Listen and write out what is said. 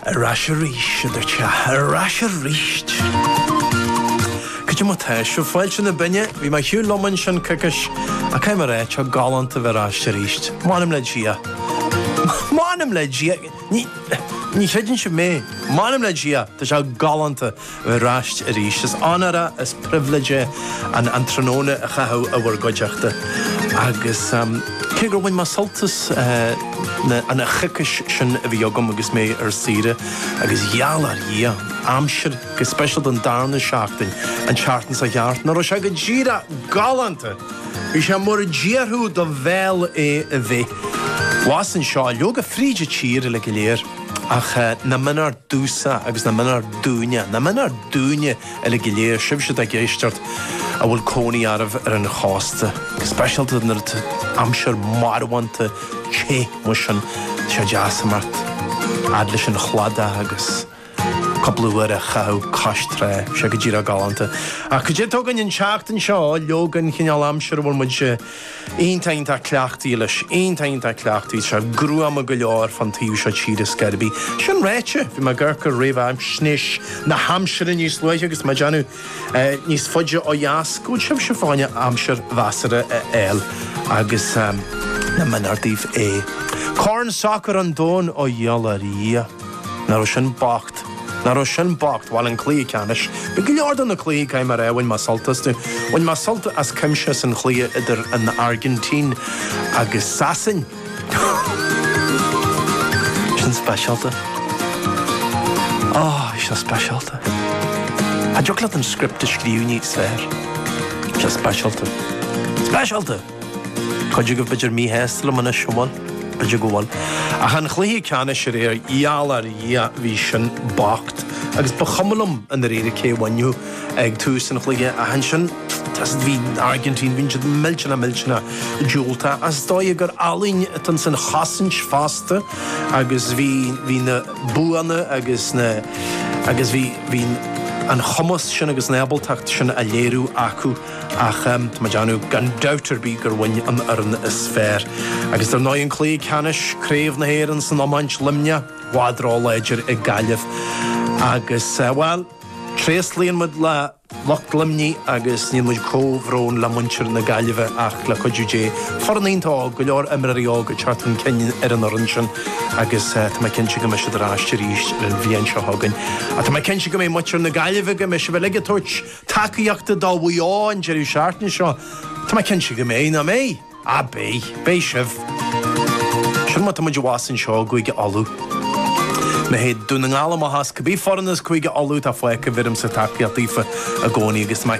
Ar ais aríst, a dúirt sé, ar ais aríst. Cad é mar atá sibh? Fáilte isteach na Binne, bhí mé ar shiúl liom ansin coicis, ach cé mar é, tá galánta bheith ar ais aríst. M'anam le Dia. M'anam le Dia! Ní, ní chreideann sibh mé. M'anam le Dia, tá sé galánta. Ar ais arís. Is onóir agus pribhléid é an tráthnóna a chaitheamh i bhur gcuideachta agus cé gur bhain mé sult as an choicis sin a bhí agam agus mé ar saoire, agus a gheall ar Dhia, aimsir, go speisialta an darna seachtain, an tseachtain seo thart, nach raibh sé go díreach galánta! Bhí sé mar a déarfadh do bhéal é a bheith. Abhus anseo, leoga fríd an tír uile go léir. Ach nach méanar domhsa agus nach méanar dúinne, nach méanar dúinn uile go léir, sibhse atá ag éisteacht, a bhfuil cónaí oraibh ar an chósta, go speisialta nuair atá aimsir mharbhánta te mar sin, tá sé deas imeacht fhad leis an chladach agus cúpla uair a chaitheamh cois trá. Tá sé go díreach galánta. Ach cad é a dtig an an tseachtain seo, leoga, an cineál aimsire a bhfuil muid. iontach cleachtaithe leis. Iontach cleachtaithe. Tá sé gruama go leor fán taobh seo tíre ar scor ar bith. Sin ráite, bhí mé ag amharc ar réamhaisnéis na haimsire níos luaithe agus mé ag déanamh, níos faide ó dheas go bhfuil sibhse ag fáil aimsir mheasartha a fháil agus nach méanar daoibh é. Corn Sacair an Domhain ó, a gheall ar Dhia. Nach raibh sin bocht. Nach raibh sin bocht. Bhail, an cluiche ceannais. Bhí go leor de na cluichí, caithfidh mé a rá, bhain mé sult astu. Bhain mé sult as cuimse as an chluiche idir an Airgintín agus Sasain. Sin speisialta. Oh, is ea speisialta. Cha dtiocfadh leat an script a scríobh níos fearr. Is ea speisialta. Speisialta! Cuid agaibh b'fhéidir míshásta liom anois, an bhfuil? B'fhéidir go bhfuil. Ach an cluiche ceannais aréir, a gheall ar Dhia, bhí sin bocht. Agus ba chuma liom i ndáiríre cé a bhainfeadh ag tús an chluiche ach ansin bhí an Airgintín, bhí siad millteanach millteanach diúltach. Ach is dóigh gur ealaín atá insan chosaint fosta agus bhí na buanna agus na, agus bhí an cumas sin agus an ábaltacht sin á léiriú acu. Ach tá mé ag déanamh gan dabht ar bith gur bhain an fhoireann is fearr, agus dar ndóigh an cluiche ceannais, Craobh na hÉireann san iomáint, Luimneach, i bhfad ró-láidir ag Gaillimh. Agus, bhuel, tréaslaíonn muid le lucht Luimnigh agus níonn muid comhbhrón le muintir na Gaillimhe ach le cuidiú Dé, foireann iontach óg, go leor imreoirí óga ag teacht chun cinn ar an fhoireann sin agus tá mé cinnte go mbeidh siad ar ais arís ar an bhliain seo chugainn. Ach tá mé cinnte go mbeidh muintir na Gaillimhe, go mbeidh sibh uilig ag tabhairt tacaíochta do Mhaigh Eo an deireadh seachtaine seo. Tá mé cinnte go mbeidh, nach mbeidh? Á, beidh. Beidh sibh. Sin mar atá muid abhus anseo i gCúige Uladh. Má théann Dún na nGall amach as. Cibé foireann as Cúige Uladh atá fágtha, bheirimse tacaíocht daofa i gcónaí agus tá mé.